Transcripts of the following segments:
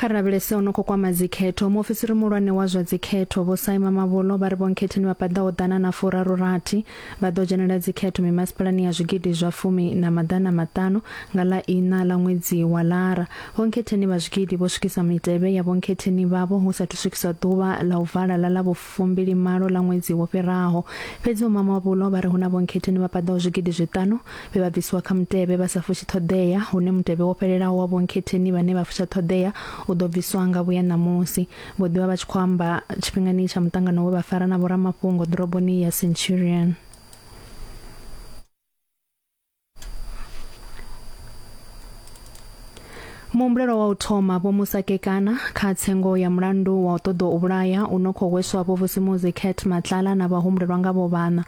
kha ri lavhelese ono khou kwama dzikhetho muofisiri muhulwane wa zwa dzikhetho vho saima mavholo vha ri vhonkhetheni vha paḓaho ḓana na furaru rathi vha ḓo dzhenela dzikhetho mimasipalani ya zwigidi zwa fumi na maḓana maṱanu nga ḽa ina ḽa ṅwedzi wa lara vhonkhetheni vha zwigidi vho swikisa mitevhe ya vhonkhetheni vhavho hu sathu swikiswa ḓuvha ḽa u vala ḽa ḽa fumbilimalo ḽa ṅwedzi wo fhiraho. Fhedzi Vho Mamabolo vha ri hu na vhonkhetheni vha paḓaho zwigidi zwiṱanu vhe vha bvisiwa kha mutevhe vha sa fushi ṱhoḓea, hune mutevhe wo fhelelaho wa vhonkhetheni vhane vha fusha ṱhoḓea u ḓo bviswa nga vhuya ṋamusi. Vho ḓi vha vha tshi khou amba tshifhingani tsha muṱangano we vha fara na vhoramafhungo ḓoroboni ya Centurion. muhumbulelo wa u thoma vho musa kekana kha tsengo ya mulandu wa u ṱoḓa u vhulaya u no khou hweswa vho vusimuzi cat matlala na vhahumbulelwa nga vho vhana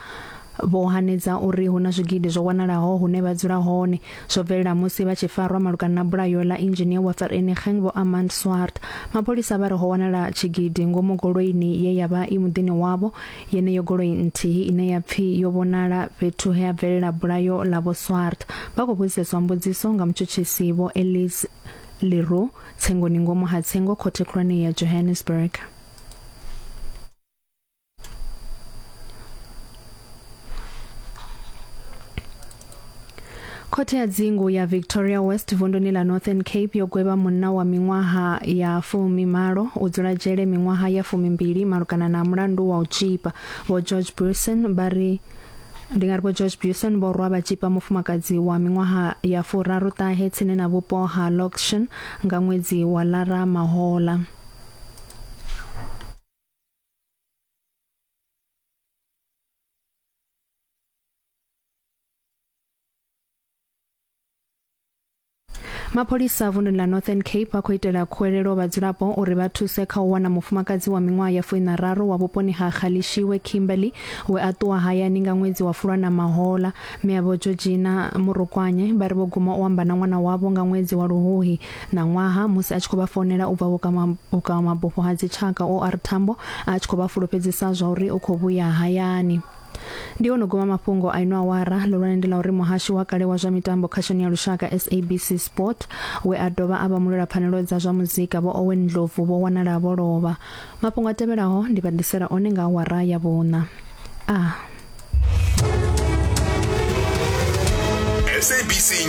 vho hanedza uri hu na zwigidi zwo wanalaho hune vha dzula hone zwo bvelela musi vha tshi farwa malugana na bulayo ḽa engineer wa vereniging vho amand swart mapholisa vha re ho wanala tshigidi ngomu goloini ye ya vha i muḓini wavho Yeneyo goloi nthihi ine ya pfi yo vhonala fhethu he ha bvelela bulayo ḽa Vho Swart, vha khou vhudziseswa mbudziso nga mutshutshisi Vho Elise Le Roux tsengoni ngomu ha tsengo Khothe Khulwane ya Johannesburg. khothe ya dzingu ya victoria west vunduni ḽa northern cape yo gwevha munna wa miṅwaha ya fumi malo u dzula dzhele miṅwaha ya fumi mbili malugana na mulandu wa u tshipa vho george bruson vha ri ndi nga ri vho george buson vho rwa vha tshipa mufumakadzi wa miṅwaha ya furaru ṱahe tsini na vhupo ha loction nga ṅwedzi wa lara mahola mapholisa vunḓuni ḽa northern cape vha khou itela khuwelelo vhadzulapo uri vha thuse kha u wana mufumakadzi wa miṅwaha ya fuinararu wa vhuponi ha xalishiwe kimberly we a ṱuwa hayani nga ṅwedzi wa fulwa na mahola miavho georgina murukwanye vha ri vho guma u amba na ṅwana wavho nga ṅwedzi wa luhuhi na ṅwaha musi a tshi khou vha founela u bva vhukavhamabufho ha dzitshaka or tambo a tshi khou vha fulufhedzisa zwa uri u khou vhuya hayani Ndi ono guma mafhungo a ino awara ḽihulwane ndi ḽa uri muhashi wa kale wa zwa mitambo khashoni ya lushaka SABC Sport we a dovha a vha mulwela pfanelo dza zwa muzika vho Owen Ndlovu vho wanala vho lovha. Mafhungo a tevhelaho ndi vha ḓisela one nga awara ya vhuṋa. A. SABC